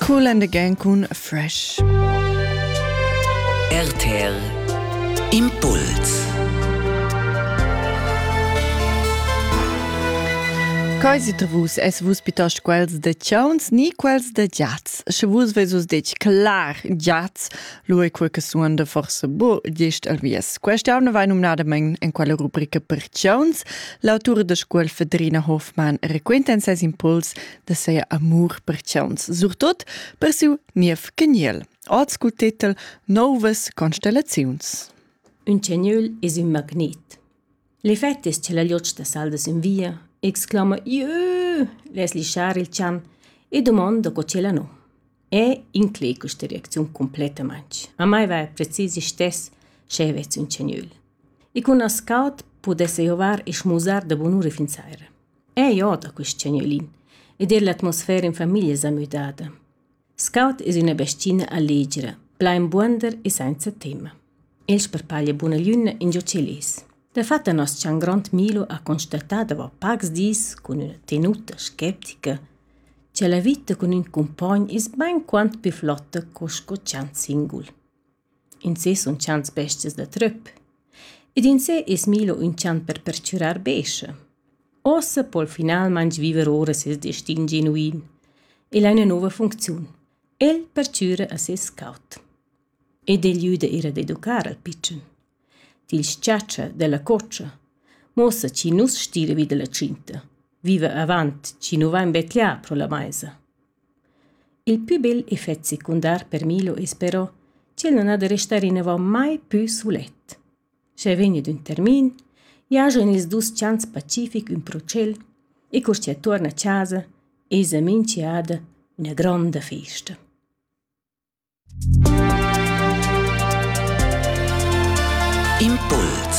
Cool and again cun Fresh. RTL Impuls Cai si tra vus es vus piuttost quels de chauns ni quels de giats? Sche vus vesus detg clar giats, Lu è quei che suonda forse bu gest al vies. Questa anna vai numnadamein en quella rubrica Perciauns. L'autura da scuol Fedrina Hofmann raquenta en ses impuls da sei amur per ciauns, surtot per siu niev caniel. Ord scu titel Novas constellaziuns. Un caniel es un magnet. L'effect es cha la liotscha da saldas in via, exclama «Iö!» less lischar il chan e dumonda co ch'ella nu. E inclè quista reacziun cumplettamaing. A mai vaja precis istess sch'eu vess ün cagnuol. E cun as caud pudess eu avair e schmusar da bunura fin saira. Eu od a quist cagnuolin ed eir l'atmosfera in famiglia s'ha müdada. Scaut es üna bestina allegra, plain buonder e sainza temma. El sparpaglia buna lünna ingio ch'el es. Dafatta nos-chan grond Milo ha constatà davo pacs dis cun üna tenuta sceptica cha la vita cun ün cumpogn es bainquant pü flotta co sco chant singul. In sez sun tschant bestias da trüp. Ed in sè es Milo ün chant per perchürar bescha. Ossa po'l finalmaing viver ora seis destin genuin e ha üna nouva funcziun. El perchüra a seis caut. Ed el güda eir ad educar al pitschen. Til s-chatscha dalla cotscha. Muossa chi nu's stira vi dalla tschinta. Viva avant chi nu vain betlià pro la maisa. Il pü bel effet secundar per Milo es però ch'el non ha da restar inavant mai pü sulet. Schi vegni d'ün termin, giaja in ils dus chants pacific ün pro tschel e cur chi tuorna a chasa esa minchiada üna gronda festa. Impuls